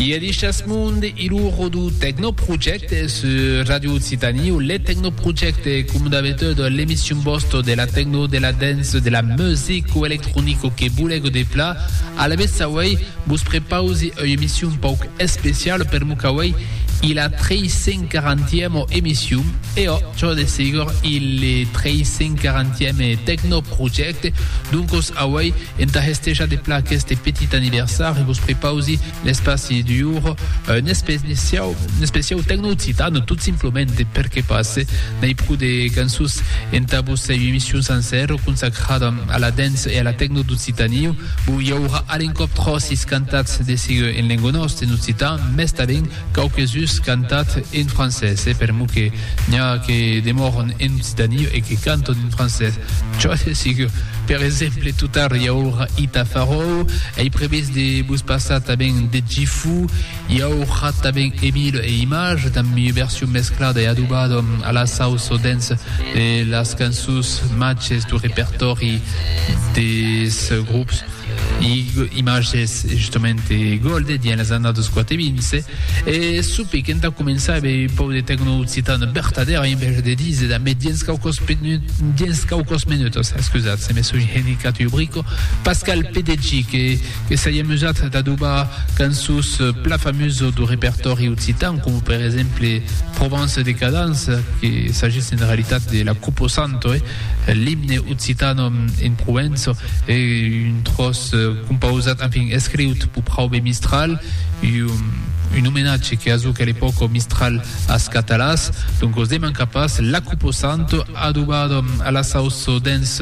Iè dichas mond i lo rodu Tecnoproject su Radio Occitanie o le Tecnoproject com d'habitude l'emission bosto de la techno, de la dance, de la music o electronico que bulego de pla. A la vez avui vos prepausi ua emission pauc especial per mo qu'avui i la 340ème emission e o, jo de segur, i le 340ème Tecnoproject. Perfècte, doncos auei entà hestejar de plan aqueste petit aniversari, vos prepausi l'espaci d'uor, un especiau, un especiau tecno-occitan, tot simplement perque pas n'ai pro de cançons entà vossa emission sancèra consacrada a la dance e a la tecno d'Occitània. Bon, i aurà a l'encòp tròcis cantats de sigue en lengo nòste, en occitan, mès tanben Quauques us cantat en francés, e per mo que n'i a que demòron en occitani e que canton en francés, çò es sigur. Per exemple, tot tard i aurà i Tafaròu, ei previst de vos passar tanben Dejifou, i aurà tanben Emile e Image, damb ua version mesclada e adobada a la sauça dens de las cançons machs du repertòri des grops. Imatges justament Golde dins las annadas quate vinse e sope qu'entà començar ave un pòu de tecno occitan vertadèra en vèja de dise da me dins quauquas dins quauquas menutas excusat se me soi henicat ua brico Pascal Pedeggi que que s'ai amusat d'adobar cançons pla famuso do repertòri occitan coma per exemple Provence Decadence que s'agís en realitat de la Cupo Santo e L'imne occitano in Prouenço e un tròç compausat, enfin, escriut pur praube Mistral, un omenatge que a zuc a l'epòca Mistral as Catalàs, donc os demanca pas, L'acupo santo, adobado a la sauço dens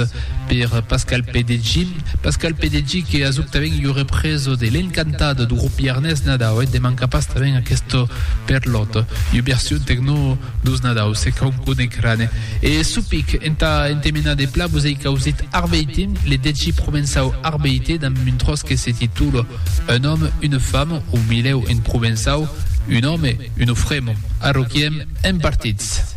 per Pascal Pedeggi, Pascal Pedeggi que a zuc tanben ua represa de L'Encantado du grup Iarnés Nadau, e demanca pas tanben aquesta per lòt, ua version tecno. Dos Nadau se cau cone crane e supic entà entemenar de pla vos ei causit Arbeiti, le deci provençau arbeite damb un tròç que se titula Un òme, une femme o milhèu en provençau Un òme, un ofremo. Arroquiem en partits.